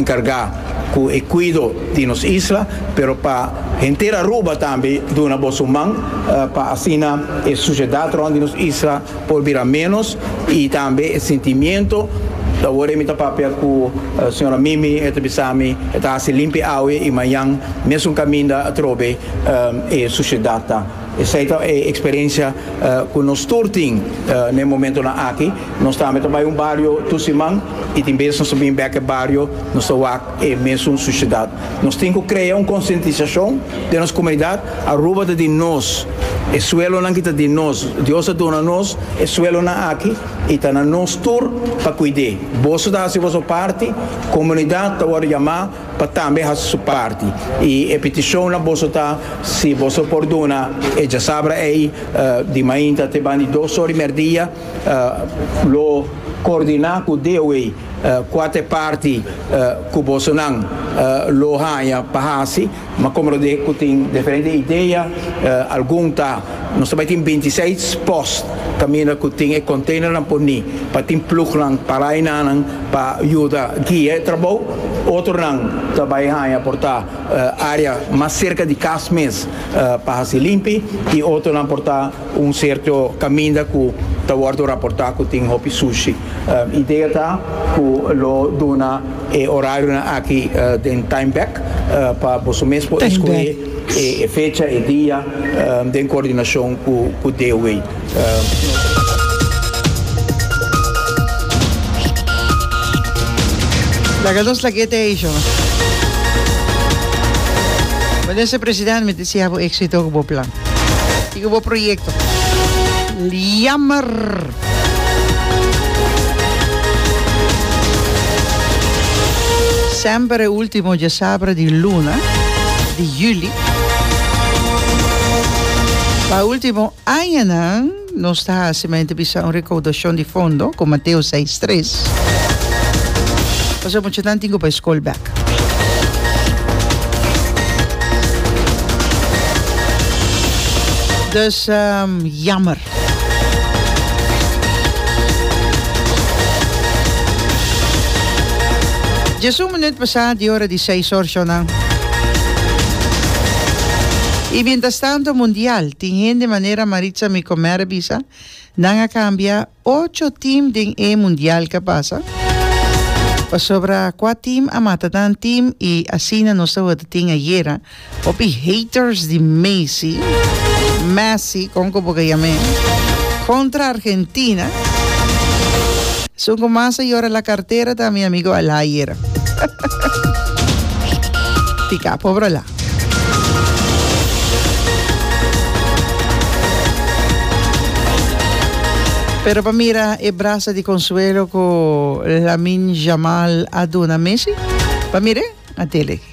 encarga cu e cuido di nos isla, pero pa henter Aruba tambe duna bo su man pa asina e suciedad rond di nos isla por bira menos y tambe e sentimiento, awor mi ta papia cu Sra. Mimi e ta bisami e ta haci limpi awe y mañan mesun caminda atrobe e suciedad ta. Esei ta e eksperensia ku nos tur tin na e momentunan aki. Nos tambe ta bai un bario tur siman i tin bes nos ta bin bek e bario, nos ta wak e mesun susidat. Nos tin ku krea un konsientisashon den nos komunidat, Aruba ta di nos, e suelonan ki ta di nos, Dios a duna nos e suelonan aki i ta na nos tur pa kuid'é. Boso ta hasi boso parti, komunidat ta wòrdu yamá. pa tambe hasi su parti y e peticion na boso ta si boso por duna e djasabra ey di mainta te ban di dos ora y merdia lo coordina cu deo ey cua ta e parti cu boso nan lo haya pa hasi ma como lo cu tin diferente idea algun ta nos ta bay tin binti i seis post caminda cu tin e container nan por ni pa tin plugnan para y nanan Pa yuda guia e trabou, otronan ta bai haña por ta área mas serka di kas mes pa hasi limpi i otronan por ta un serto kaminda ku ta wòrdu raportá ku tin hopi sushi. Idea ta ku lo duna e orarionan aki den Time Back pa boso mes por eskohé. E fecha, e dia, den coordinacion cu DOH. Laga nos lagueta ey sho. Minister President mi desea bo exito cu bo plan y cu bo proyecto. Jammer! Semper e ultimo djasabra di luna di juli. Pa ultimo añanan nos ta hasi men te bisa un recaudashon di fondo ku Mateo 6 tres. Pasobra muchanan tin ku bai skol bèk. Dus jammer. Djes un minut pasá di ora di seis orshonan. I mientras tanto Mundial tin hende manera Maritza Micomer a bisa nan a cambia ocho team den e Mundial ke a pasa. Pasobra cua team a mata nan team i asina nos ta worde tin ayera. Hopi haters di Messi, Messi con cu boca yam'e, contra Argentina. Esun cu mas a yora la cartera ta mi amigo Alayer. Tica pobra la. Pero pa mira e brasa di consuelo cu Lamine Yamal a duna Messi, pa mire a tele.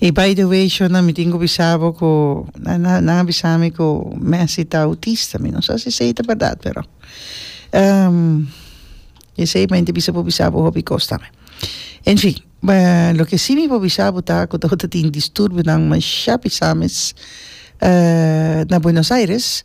Y by the way shona mi tin cu bisa bo cu nan a bisa mi cu Messi ta autista mi no sa si esey ta berdad pero esey bay tin bisa por bisa bo hopi cos tambe en fin loke si mi por bisa bo ta cu dor ta tin disturbinan masha bisa mes na Buenos Aires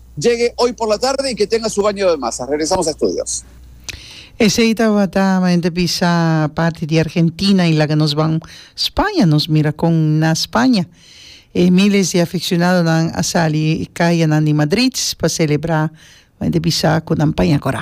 Djegue oy por la tarde y que tenga su baño de masa. Regresamos a estudios. Esey tabata mente bisa parti di Argentina y laga nos ban Spaña. Nos mira con na Spaña e miles di aficcionadonan a sali cayanan di Madrid pa celebra mente bisa cu nan paña cora.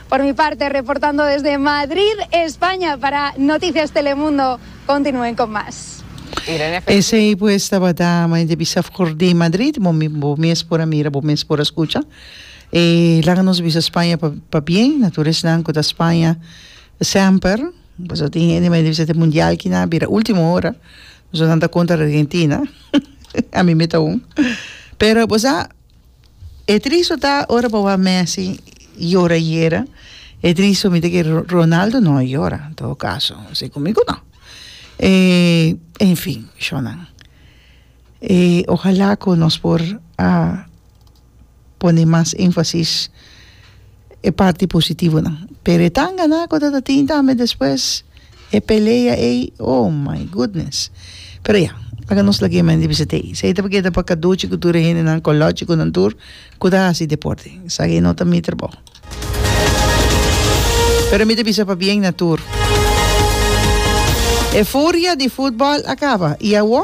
Por mi parte, reportando desde Madrid, España, para Noticias Telemundo, continuen con mas. Esey pues tabata Mente Bisaf Cordé Madrid bo bo mes por a mira bo mes por a scucha e laga nos bisa Spaña pa pa bien na tur esnan cu ta Spaña semper pasobra tin hende mende bisa te mundial ki na bira ultimo hora nos nan ta contra Argentina ami mita un pero bo sa E tristo ta ora bo wak Messi yora yera e tristo mi ta ke Ronaldo no a yora en todo caso si cu mi cu no en fin shor nan ojala cu nos por a pone mas enfasis e parti positivonan pero e tan ganá cu ta ta tin tambe despues e pelea ey oh my goodness pero ya laga nos lagu'e mente bisa ta ey esey ta por keda pa Caduchi cu tur e hendenan colochiconan tur cu ta haci deporte sa ey no ta mi trabaho pero mi ta bisa pa bien na tur e furia di footbal a caba y awo.